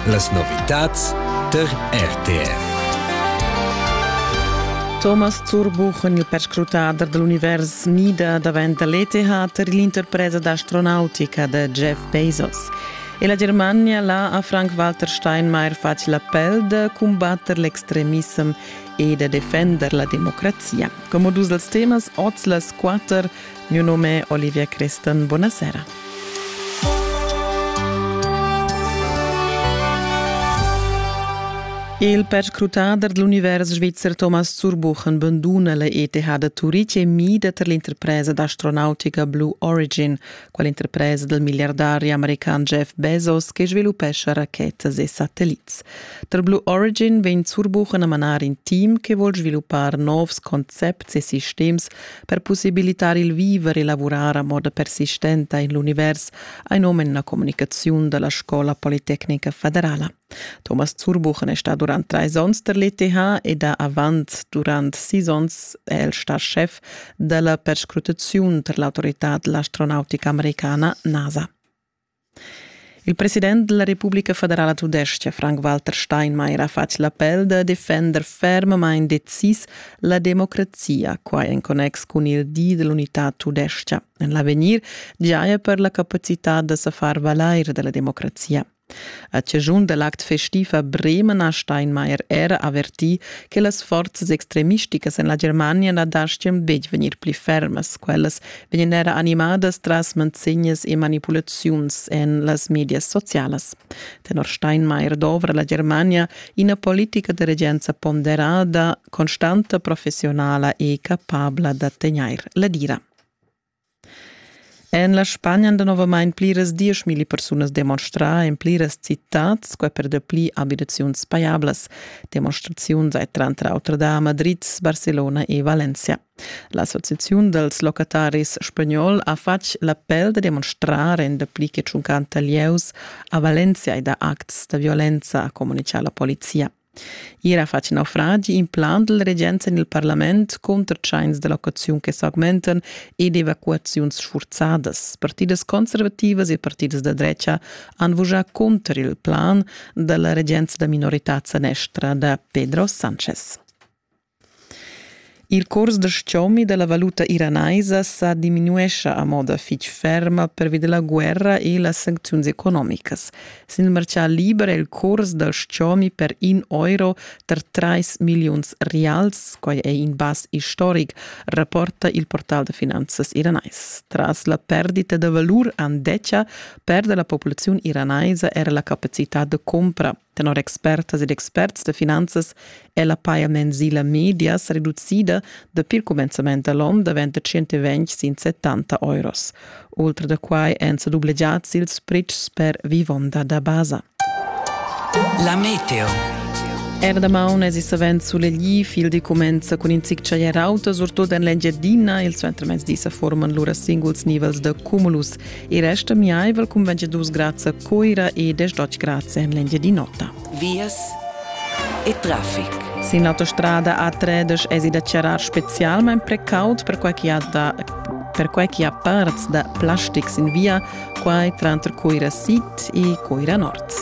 Las novitads tar RTR. Thomas Zurbuchen, il perscrutader dell'univers NIDA daventa l'ETH per l'interpresa d'astronautica da Jeff Bezos. E la Germania l'ha a Frank-Walter Steinmeier fatg l'appel da combatter l'extremissem e da defender la democrazia. Come dus els temas, oz las quatter Miu num è Olivia Creston. Buonasera. Il perscrutader dell'univers svizzer Thomas Zurbuchen banduna la ETH da Turitg e mida per l'interpresa d'astronautica Blue Origin, quell'interpresa del miliardario american Jeff Bezos che sviluppescia rachetas e satellits. Tar Blue Origin vegn Zurbuchen a manar in team che vuol sviluppar novs concepts e sistems Per possibilitar il viver e lavurar a moda persistenta in l'univers ein um en la communicaziun dalla Scola Politecnica Federala. Thomas Zurbuchen è sta durant treis onns der l'ETH ed ha avant durant sis onns el sta chef della perscrutaziun per l'autorità dell'astronautica americana NASA. Il president della Republica federala tudestga Frank-Walter Steinmeier ha fatg l'appel da defender fermamain decis la democrazia, quai en connex cun il di dell'unità tudestga. En l'avegnir giaja per la capacità da sa far valair della democrazia. A cigiun dell'act festiv a Bremen ha Steinmeier era avertì che las forzas extremisticas en la Germania na dastgan betg vegnir pli fermas, quellas vegnan era animadas tras manzegnas e manipulaziuns en las medias socialas. Tenor Steinmeier dovra la Germania ina politica de regenza ponderada, constanta, professionala e capabla da tegnair la dira. En la Spagna han novamain pliras dieschmilli persunas demonstrà en pliras citats, quai per dapli abitaziuns pajablas. Demonstraziuns hai tranter auter da Madrid, Barcelona e Valencia. L'associaziun dals locataris spagnol ha fatg l'appel da demonstrar en dapli che tschuncanta lieus a Valencia ed a acts da violenza, communica la polizia. Ier ha fatg naufragi in plan dal regenza en il parlament cunter tschains da locaziun che s'augmentan ed evacuaziuns sfurzadas. Partidas conservativas e partidas da drecha han vujà cunter il plan da la regenza da minorità sanestra da Pedro Sanchez. Il curs da stgomi dalla valuta iranaisa sa diminuescha a moda fetg ferma pervi dalla guerra e las sancziuns economicas. Sin il marcà liber è il curs dal stgomi per in euro tar trais milliuns rials, quai è in bass istoric, rapporta il portal da finanzas iranais. Tras la perdita da valur andetga perda la populaziun iranaisa era la capacitad da compra Tenor expertas ed experts da finanzas è la paja mensila media sa reducida dapi il cumenzament da l'onn davent da 120 sin 70 euros. Ultra da quai èn sa dublegiads ils pretschs per vivonda da basa. La meteo. Era damaun es savens sulegli, fil di comenza cun in zic chaglier auto, surtut en l'Engiadina. Il suentermezdi sa forman lura singuls nivels da cumulus. Il resta miaivel cunveggia dus grazia Coira e desdotg grazie en l'India di nota. Vias e traffic. Sin l'autostrada A3 es da charar specialmain precaut per quai chi ha da per quai chi ha parts da plastics in via, quai tranter Coira Sid e Coira Nord.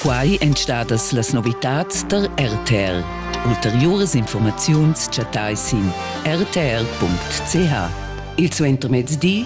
Quai èn stadas las novitads tar RTR. Ulteriuras informaziuns chattai sin rtr.ch. Il suentermezdi